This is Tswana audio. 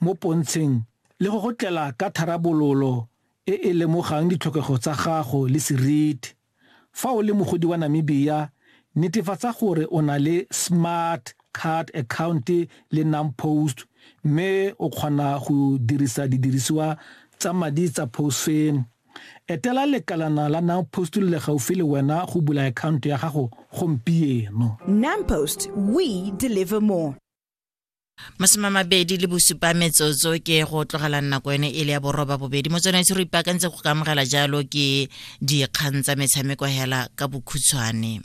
mo pontsheng le go go tlela ka tharabololo e e lemogang ditlhokego tsa gago le seriti. Fa o le mogodi wa Namibia, netefatsa gore o na le Smart Card Account le NamPost mme o kgona go dirisa didirisiwa tsa madi tsa PostFam. Etela lekalana la NamPost le le gaufi le wena go bula akhaonto ya gago gompieno. NamPost, we deliver more. masome mabedi le bosupa metsotso ke go tlogela nako ene e le ya boroba bobedi mo tsone se re ipaakantse go ka amogela jalo ke dikgang tsa metshameko hela ka bokhutshwane